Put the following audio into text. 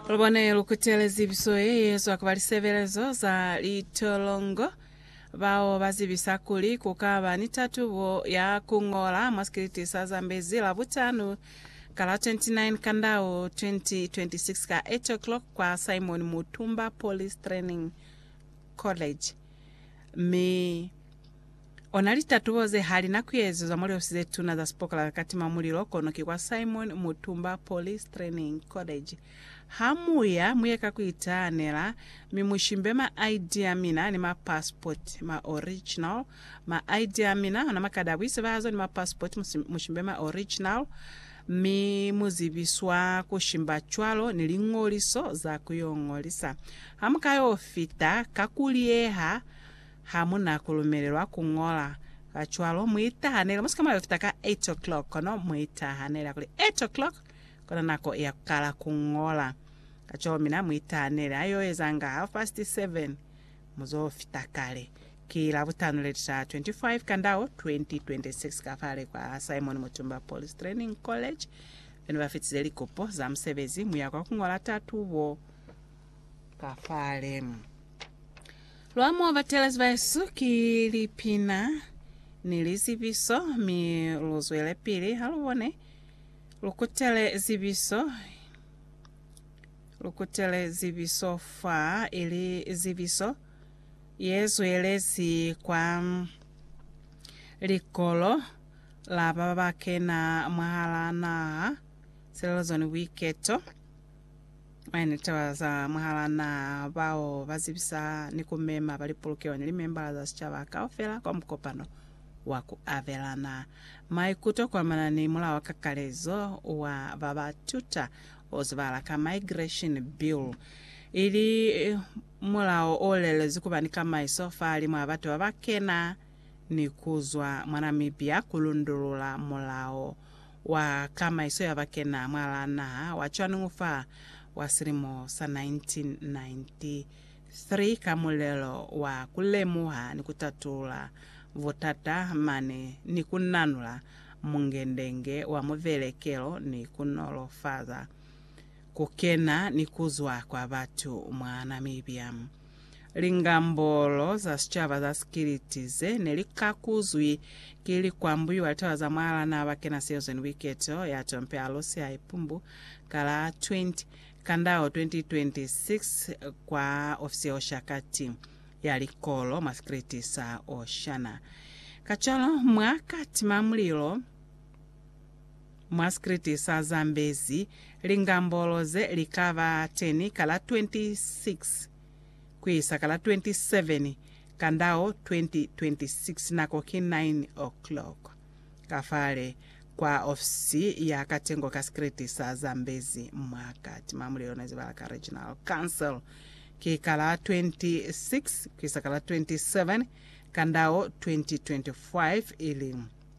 Lubone lukutele zibiso ye yezwa kuba lisebelezo za litolongo bao bazibisa kuli kukaba ni tatubo ya kungola mwa sikiliti sa Zambezi Labutanu ka la 29 Kandau 2026 ka 8 o'clock kwa Simon Mutumba Police Training College mi Ona litatubo ze hali na kuezezwa mwa liosi ze tuna za sipokola ka katima mulilo, kono ki kwa Simon Mutumba Police Training College. Ha mu ya, mu ye ka ku itahanela, mi mu shimbe ma ID a mina ni ma passport, ma original, ma ID a mina, ona makadi a buisebahazo ni ma passport, mu shimbe ma original, mi mu zibiswa ku shimba cwalo ni liñoliso za ku yo ngolisa. Ha mu ka yo fita, ka ku liyeha, Ha mu na ku lumelelwa ku ñola. Kacwalo, mu itahanele. Mu si ka mona yo fita ka eight o'clock, kono mu itahanela kuli, Eight o'clock kona nako ya ku kala ku ñola. Kacwalo mina mu itahanele. Ha yo eza nga half past seven, mu zo fita kale. Ki Labutano le li taha 25 Kandao 2026 ka fale kwa Simon Mutumba Police Training College. Be ne ba fitize likupo za musebezi, mu ya kwa ku ñola tatubo. ka fale. Lwa mo batelezi ba Yesu ki lipina ni lizibiso, mi lu zwelepili ha lu bone lu kutele zibiso lu kutele zibiso fa ili zibiso ye zwelezi kwa likolo la ba ba kena mwahala naha, silelezo ni buiketo. Mañi taba za mwahal'a naha bao ba zibisa ni ku mema ba lipolokeho ni limembala za sicaba kaufela kwa mukopano wa ku abelana maikuto kuamana ni Mulao wa Kakalezo wa ba ba Tuta o zibala ka Migration Bill, ili mulao o lelezi ku ba ni kamaiso fahalimw'a ha batu ba ba kena ni ku zwa mwa Namibia ku lundulula mulao wa Kamaiso ya Bakena mwalaa naha wa Chuan'ng fa wa silimo sa 1993 ka mulelo wa ku lemuha ni ku tatulula butata mane ni ku nanula mungendenge wa muvelekelo ni ku nolofaza ku kena ni ku zwa kwa batu mwa Namibia. Lingambolo za sicaba za Sikiliti ze ne li kakuzwi ki likwambu iwa litaba za mwal'a n'a ba kena Seozweni Buiketo ya Tompi a Lusi a Ipumbu ka la 20 Kandao 2026 kwa ofisi ya Oshakati ya Likolo mwa Sikiliti sa Oshana. Kacwalo mwa ka tima mulilo. Mwa sikriti sa Zambezi, lingambolo ze li ka ba teni ka la 26 ku isa ka la 27 Kandao 2026, nako ki 9:00 ka fale kwa ofisi ya katengo ka sikriti sa Zambezi mwa kati mwa mulelo ne zibahala ka Regional Council. Ki ka la 26 ku isa ka la 27 Kandao 2025, ili.